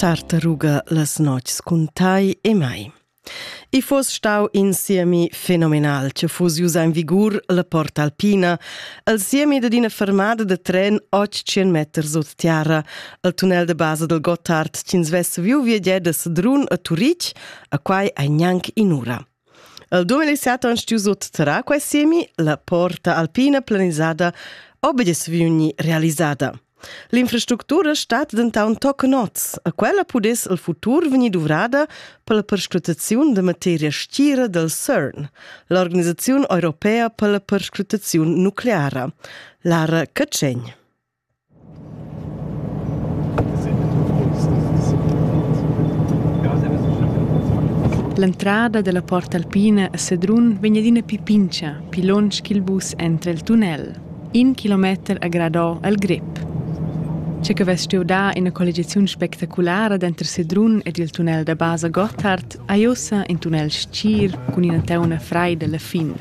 Tartaruga las notgs cun tai e mai. I fos stau in siemi fenomenal che fus iusa in vigur la Porta Alpina, al siemi da d'ina fermada da tren 800 meter sut terra, al tunnel de base del Gottard, ch'ins vess viu viagier da Sedrun a Turic, a quai ei gnanc in'ura. El 2007 han stuì sutterrar quai siemi, la porta alpina planisada obegis vegni realisada. L'infrastructura stat dentant toc noz. A quella pudess il futur vegnir duvrada per la perscrutaziun da materia stira del CERN, l'organisaziun europea per la perscrutaziun nucleara, Lara Cacegn. L'entrada dalla Porta Alpina a Sedrun vegn adina pli pintga pli lunsch ch'il bus entra el tunnel. In kilometer ha gradò el grep. Tge che vess stuiu dar ina colligiaziun spectaculara denter Sedrun ed il tunnel da basa Gotthard ha ussa in tunnel stgir cun ina teuna freida alla fin.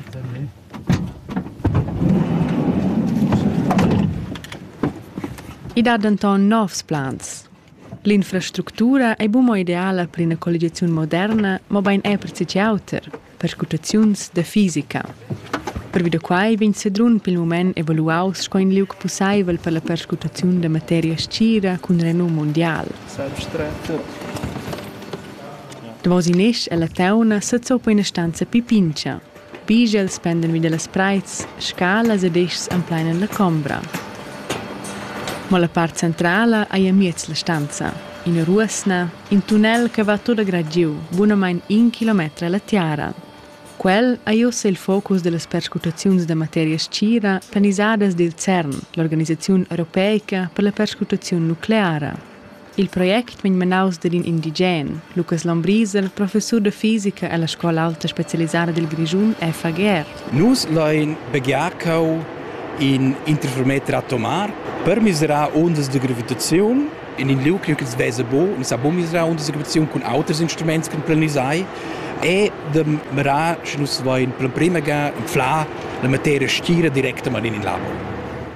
I dat denton novs plans. L'infrastructura ei buca ideala per ina colligiaziun moderna, mobein era per tgi auter, perscrutaziuns da fisica. Pervi da quai vegn Sedrun pil mument evaluaus sco in liug pusseivel per la perscrutaziun da materia scira cun renum mundial. Davos in esch ella teuna sezza po ina stanza pipintscha. Pigls pendan vi dallas preits, scalas ed eschs emplainan la combra. Mo la part centrala ei amiez la stanza, ina ruosna, in tunnel che va tut grad giu, bunamein in kilometer alla tiara. Quel ei ussa il focus dallas perscrutaziuns da materia stgira planisadas dil CERN, l'organisaziun europeica per la perscrutaziun nucleara. Il project min menaus dad in indigen, Lukas Lombriser, professur da fisica ella scola aulta specialisada dil Grischun FAGR. Nus lein baghiar cheu in interferometer atomar per miserar ondas de gravitaziun in in liug ch'ils vesa bo, ni sa bo miserar undas de gravitaziun cun auters instruments che planisai e de mirar, sche nus lein per prima ga inflar la materia stira directamain in labo.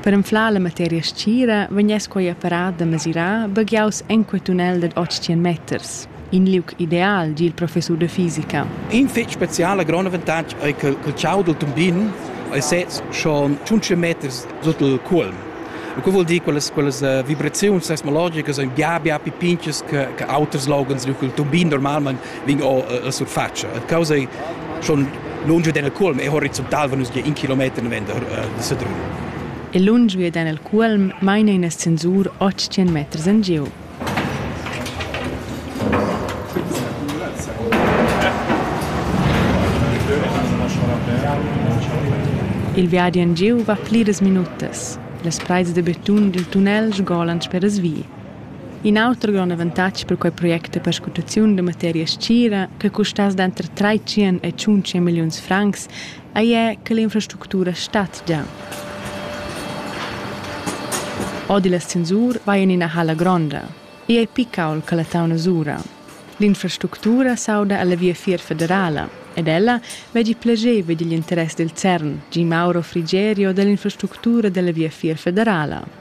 Per anflar la materia stgira vegness quei apparat da mesirar baghiaus enqual tunnel dad 800 meters. In liug ideal, di il professur da fisica. In fetg speciala grond avantatg ei che il ciau dal tumbin ei sez schon 500 meters sut il cuolm. E co vuol dir quelles quelles uh, vibraziuns seismologicas ein bia bia più pinches che che auters logans, il tumbin normalmente vin o la surfatscha. A causa schon lunge den el culm e horizontal van nus gie in kilometer noventa de Sedrun. E lunge den el culm maina in ascensur 800 meters en giu. Il viadi en giu va pliras minutas. Las preis de beton dil tunnel sgolan sper as vi. In auter grond avantatg per quei project è perscrutaziun da materia stgira che custass denter 300 e 500 milliuns francs, ei è che l'infrastructura stat già. Odi la censur vai in ina halla gronda. Ei ei picaul che la tauna sura. L'infrastructura s'auda alla viafier federala ed ella veggi plageva digl interess del CERN, Gi Mauro Frigerio dall'infrastructura della viafier federala.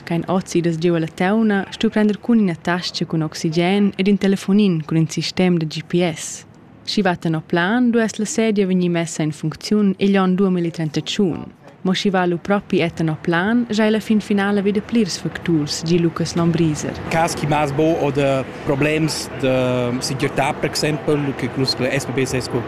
Ch'ein ozidas giu ella teuna, stu prender cun ina tascha cun oxigen ed in telefonin cun in sistem da GPS. Sch'i va tenor plan, duess la sedia vegnir messa en funcziun igl onn duo mille trentotschun. Mo sch'i va lu propi è tenor plan, sch'ei la fin finala veda plirs facturs, gi Lucas Lombriser. Cas chi m'as bo oder problems da segirtà per exempel che nus la SPB sez co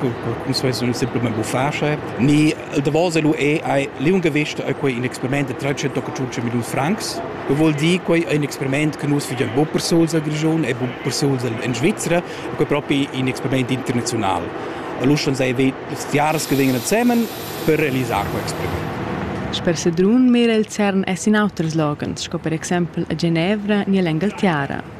nus vessan simplamain buffà sche ni il davos lu è ei liungavisch ei quei in experiment da 325 milliun francs che vuol dir quei ein experiment che nus figian bu per suls al Grischun e bu per suls in Svizra quei propi in experiment internazional allora schon sei stiaras che vengono zusammen per realisar quei experiment Sper Sedrun mira il CERN es in auters loghens, sco per exempel a Genevra ni all'Engaltiara.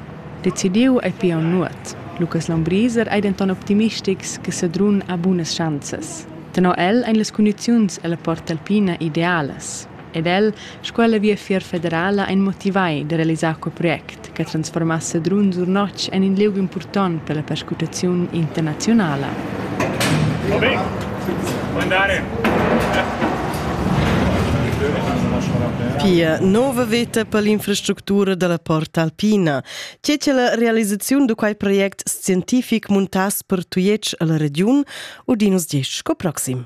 Decidiu ei pia nuot. Lucas Lombriser ei denton optimistics che Sedrun ha bunas schanzas. Tenor el ein las cundiziuns ella Porta Alpina idealas. Ed el, sco ella Viafier federala, ein motivai da realisar quei project che transformass Sedrun sur notg en in liug impurtont per la perscrutaziun internazionala. Obe. Pia nova veta per l'infrastructura dalla Porta Alpina. Tge che la realisaziun da quei project scientific muntass per Tujetsch alla regiun, udinus 10 sco proxim.